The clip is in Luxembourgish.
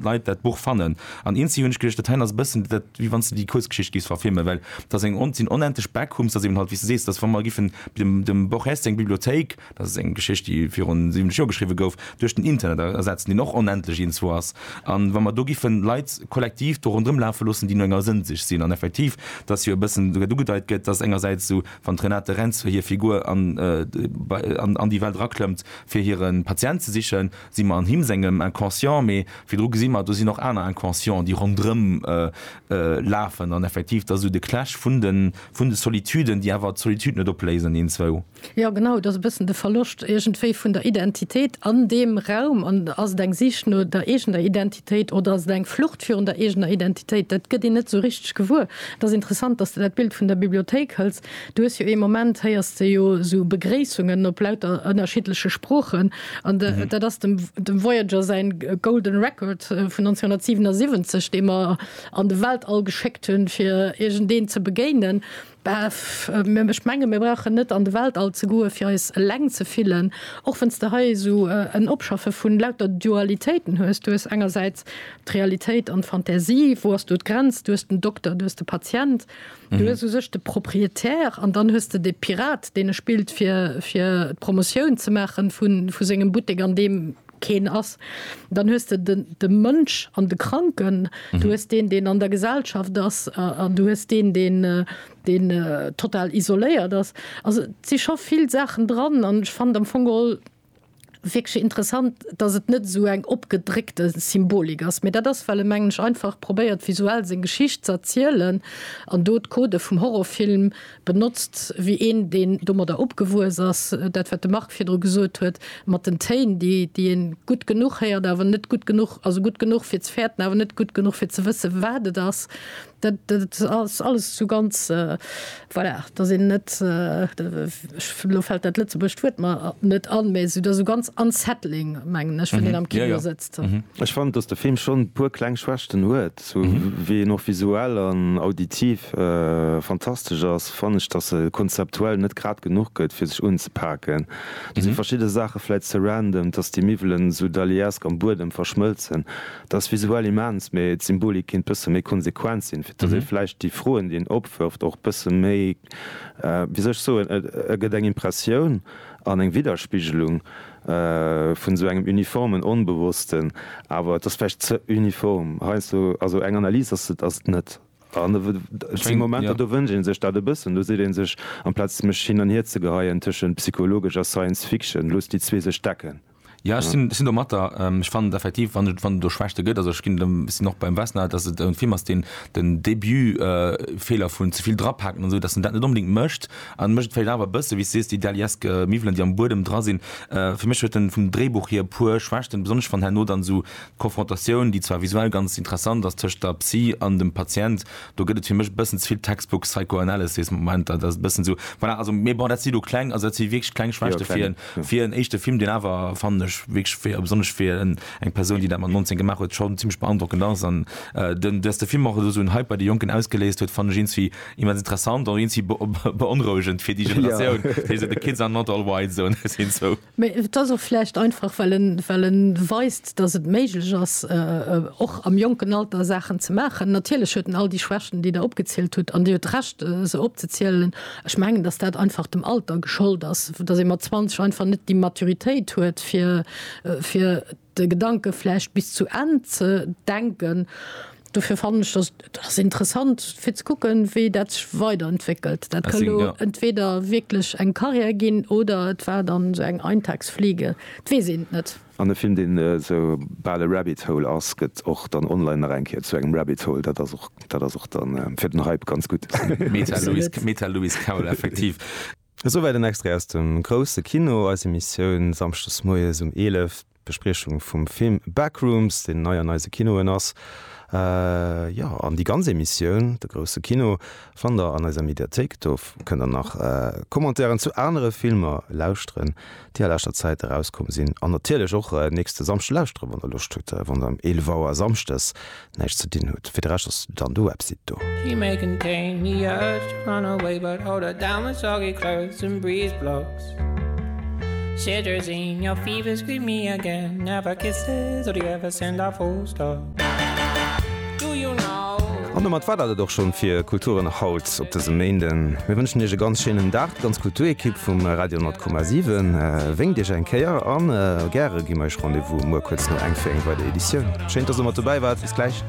Leit dat Buch fannen. An eens si hunn ech geduecht, dat heien ass e bëssen dat, wéi wann s de déi Kuerzgeschicht géifs verfilmen, well et ass eng, sinn onendlech Backroom, s ass eben halt, wéi s de sees, et ass wa mer giffen dem, dem Borges seng Bibliothéik, dat ass eng Geschicht, déi virun 70 Joer geschriwwe gouf, duerch den Internet ersetzen, deen och onendlech iergendwou ass. An wa mer do giffen Leit kollektiv do ronderëm lafe loossen, déi no enger Sënn sich sinn, an effektiv, et ass jo e bëssen esouguer ugedeit gëtt, dass engersäits esou, wann d'Renate Rentzel hir Figur an, an, an déi Welt eraklëmmt, fir hire Patient ze sichen, si mer an him sengem Inconscient, mee virdru gesi mer, do sinn och aner Inconscienten, déi ronderëm lafen an effektiv, dat ass esou de Clash vun de, vun de Solituden, déi awer d'Solitude net opléisen, een, zwou. Jo, genau, et ass e bëssen de Verloscht iergendwéi vun der Identitéit an deem Raum. An ass et eng Sich no der eegener Identitéit oder ass et eng Flucht virun der eegener Identitéit? Dat gëtt een net esou richteg gewuer. Et ass interessant, dass de dat Bild vun der Bibliothéik hëls, Du hues jo ee Moment, héiers de jo esou Begréissungen op lauter ënnerschiddleche Sproochen. An dat ass dem Voyager säin Golden Record vun 1977, dee mer an de Weltall geschéckt hunn, fir iergendeen ze begéinen. Ech menge mir brauchen net an de Weltall ze goen, fir eis eleng ze fillen. Och wann s de hei esou en Opschaffe vun lauter Dualitéiten hues, du hues engersäits d'Realitéit an d'Fantasie, wou ass do d'Grenz? Du hues den Dokter, du hues de Patient. Du hues u sech de Propriétaire an dann hues de de Pirat, deen e spillt, fir, fir d'Promotioun ze maache vu sengem Buttek, an deem keen ass. Dann hues de de, de Mënsch an de Kranken. Du hues deen, deen an der Gesellschaft ass, an du hues deen, deen, deen total isoléiert ass. Also et si scho vill Saachen dran an ech fannen am Fong geholl, wierklech interessant, dass et net esou eng opgedréckte Symbolik ass, mä dat ass, well e, mengen ech, einfach probéiert, visuell seng Geschicht ze erzielen an do d'Codë vum Horrorfilm benotzt, wéi een, deen domadder opgewuess ass, dat, wat de Marc virdru gesot huet mat den Téin, déi, déi ee gutt genuch héiert, awer net gutt genuch, also gutt genuch, fir ze fäerten, awer net gutt genuch, fir ze wësse, wat et ass. Dat ass alles esou ganz, voilà, dass een net, elo fält dat lëtzebuergescht Wuert mer net an, mä et ass esou ganz unsettling, mengen ech, wann een am Kino sëtzt. Ech fannen, dass de Film schonn e puer kleng Schwächten huet. Sou wéi en och visuell an auditiv fantastesch ass, fannen ech, dass e konzeptuell net grad genuch gëtt, fir sech unzepaken. Do si verschidde Saache vläicht ze random, dass déi Miwwelen esou Dalí-esk am Buedem verschmëlzen. Dat ass visuell immens, mee d'Symbolik kinnt bësse méi konsequent sinn, fir dass ee vläicht déi Froen, déi en opwërft, och bësse méi, wéi soll ech soen, e gëtt eng Impressioun an eng Widderspigelung vun esou engem uniformen Onbewossten, awer et ass vläicht ze uniform heiansdo. Also eng Analys ass et net. An et si Momenter, do wënscht ee sech dat e bëssen. Do seet ee sech, amplaz mech hin an hierzegeheien tëschent psychologesch a Science Fiction, loosst déi zwee sech decken. Jo, ech sinn domat der. Ech fannen et effektiv, wann et do Schwächte gëtt, also ech ginn dem, sinn och beim Vesna, datt et e Film ass, deen den Début Feeler vun ze vill drapaken an esou, datt en dat net onbedéngt mécht. An e mécht et vläicht awer e bësse, wéi s de sees, déi daliesk Miwwelen, déi am Buedem dra sinn. Fir mech huet en vum Dréibuch hier e puer Schwächten, besonnesch wann herno dann esou d'Confrontatioun, déi zwar visuell ganz interessant ass, tëscht der Psy an dem Patient, do gëtt et fir mech e bëssen ze vill Textbook Psychoanalysis Momenter. Dat ass e bëssen esou, voilà, also, mee bon, dat si lo kleng, also dat si wierklech kleng Schwächte fir en, Fir en éischte Film, deen awer, fannen ech, wierklech fir, besonnesch fir eng Persoun, déi dat mat 19 gemaach huet, schonn zimmlech beandrockend ass, an den, dass de Film och esou en Hype bei de Jonken ausgeléist huet, fannen ech iergendwéi immens interessant, och iergendwéi beonrouegend fir déi Generatioun, déi esou, The kids are not all white, esou ne, sinn esou. Mee et ass och vläicht einfach, well en, well en weist, dass et méiglech ass, och am jonken Alter Saachen ze maachen. Natierlech huet en all déi Schwächten, déi Der opgezielt hutt, an Dir hutt Recht, se opzezielen. Ech mengen, dass dat einfach dem Alter geschollt ass, dass ee mat 20 einfach net déi Maturitéit huet, fir, fir de Gedanke vläicht bis zu Enn ze denken. Dofir fannen ech, dass et ass interessant, fir ze kucken, wéi dat sech weiderentwéckelt. Dat ka lo entweder wierklech eng Carrière ginn oder et war dann esou eng Eintagsfliege. Et weess een et net. An e Film, deen esou bal e Rabbit Hole ass, gëtt och dann online nach eng Kéier zu engem Rabbit Hole. Dat ass och, dat ass och dann fir den Hype ganz gutt. Meta Louis, Meta Louis Caul, effektiv. Esouwäit en Extrait aus dem Grousse Kino, eis Emissioun samschdes moies um 11, d'Bespriechung vum Film Backrooms, deen nei an eise Kinoen ass. Jo, an déi ganz Emissioun, De Grousse Kino, fannt der an eiser Mediathéik. Do kënnt der nach Commentairen zu anere Filmer lauschteren. déi a leschter Zäit erauskomm sinn, an natierlech och nächste Samschde lauschteren, wann der Loscht hutt, wann der ëm 11 Auer samschdes näischt ze dinn hutt. Fir de Rescht ass dann de Website do. She may contain the urge to run away but hold her down with soggy clothes and breeze blocks Cetirizine, your fever scream me again Never kisses, or do you ever send a full stop? An domat war dat et och schonn fir Kulturen haut op dësem Méinden. Mir wënschen Iech e ganz schéinen Dag, d'ganz Kulturekipp vum Radio 10,7 wénkt Iech eng Kéier a gäre gi mir Iech Rendez-vous muer kuerz no eng fir eng weider Editioun. Schéin, dass Der mat dobäi waart. Bis gläich.